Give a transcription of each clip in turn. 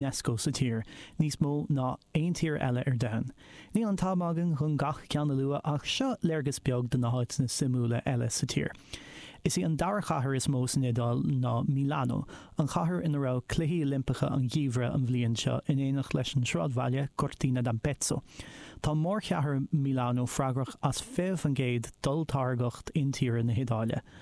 Unesco sa tír, níos mó ná aon tír eile ar domhan. Níl an t-am againn chun gach ceann a lua ach seo léargas beag de na háiteanna suimiúla eile sa tír. Is í an dara cathair is mó san Iodáil ná Milano, an chathair ina raibh Cluichí Oilimpeacha an Gheimhridh an bhliain seo in éineacht leis an tsráidbhaile Cortina d'Ampezzo. Tá mórchathair Milano freagrach as 20% d'olltáirgeacht intíre na hIodáile.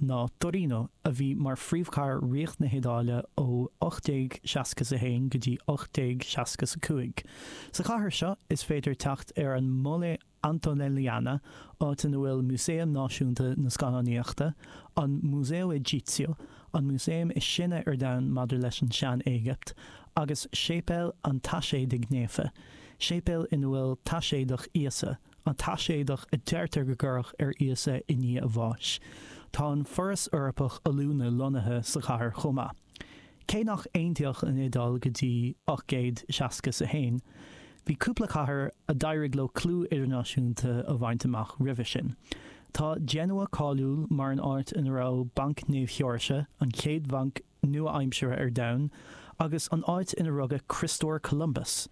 ná Torino, a bhí mar phríomhchathair Ríocht na hIodáile ó 1861 go dtí 1865. Sa chathair seo is féidir teacht ar an Mole Antonelliana, áit ina bhfuil Músaeum Náisiúnta na Scannánaíochta, an Museo Egizio, an músaeum is sine ar domhan maidir leis an tSean-Éigipt, agus Séipéal an Taiséadaigh Naofa, séipéal ina bhfuil taiséadach Íosa. An taiséadach a deirtear go gcuireadh ar Íosa i ndiaidh a bháis. Tá an Foras Eorpach Oiliúna lonnaithe sa chathair chomh maith. Cé nach aontaíodh an Iodáil go dtí ocht gcéad seasca 's a haon, bhí cúpla cathair a d'éirigh leo clú idirnáisiúnta a bhaint amach roimhe sin. Tá Genoa cáiliúil mar an áit ina raibh Banc Naomh Sheoirse, an chéad bhanc nua-aimseartha ar domhan agus an áit ina rugadh Criostóir Columbus.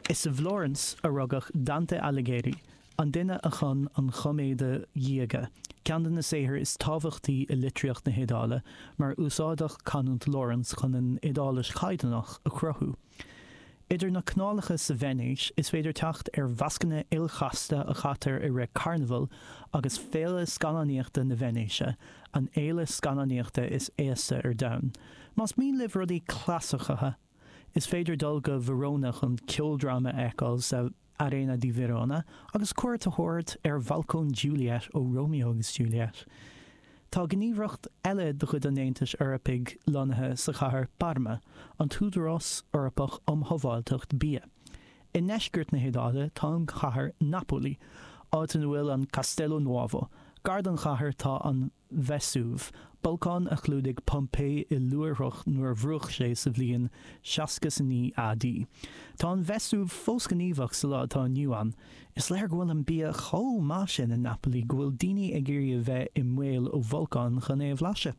Is i bhFlórans a rugadh Dante Alighieri, an duine a chum an Choiméide Dhiaga, ceann de na saothair is tábhachtaí i litríocht na hIodáile, mar úsáideadh canúint Fhlórans chun an Iodáilis chaighdeánach a chruthú. Idir na canálacha sa Veinéis, is féidir teacht ar mhascanna ilchasta a chaitear i rith Carnabhail agus Féile Scannánaíochta na Veinéise, an fhéile scannánaíochta is aosta ar domhan. Más mian libh rudaí clasaiceacha, is féidir dul go Verona chun ceoldráma a fheiceáil sa. Arena di Verona agus cuairt a thabhairt ar bhalcóin Juliet ó Romeo agus Juliet. Tá gníomhaireacht eile de chuid an Aontais Eorpaigh lonnaithe sa chathair Parma, an tÚdarás Eorpach um Shábháilteacht Bia. I ndeisceart na hIodáile tá an chathair Napoli, áit ina bhfuil an Castello Nuovo. Gar don chathair tá an. Vesuv, bolcán a chlúdaigh Pompeii i luaithreach nuair a bhrúcht sé sa bhliain 69 AD. Tá an Vesuv fós gníomhach sa lá atá inniu ann. Is léir go bhfuil an bia chomh maith sin i Napoli go bhfuil daoine ag iarraidh a bheith i mbaol ó bholcán chun é a bhlaiseadh.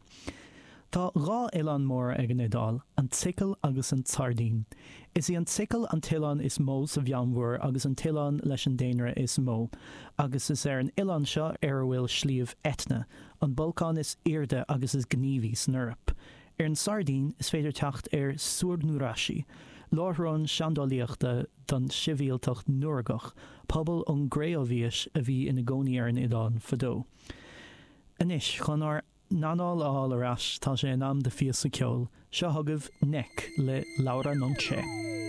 Tá dhá oileán móra ag an Iodáil, an tSicil agus an tSairdín. Is í an tSicil an t-oileán is mó sa Mheánmhuir agus an t-oileán leis an daonra is mó, agus is ar an oileán seo ar a bhfuil Sliabh Etna, an bolcán is airde agus is gníomhaí san Eoraip. Ar an tSairdín is féidir teacht ar Su Nuraxi, láithreán seandálaíochta don sibhialtacht Nuragach, pobal ón gCré-Umhaois a bhí ina gcónaí ar an oileán fadó. Anois chun ár. n-anáil a fháil ar ais, tá sé in am do phíosa ceoil. Seo chugaibh 'Neck' le Laura Nonché.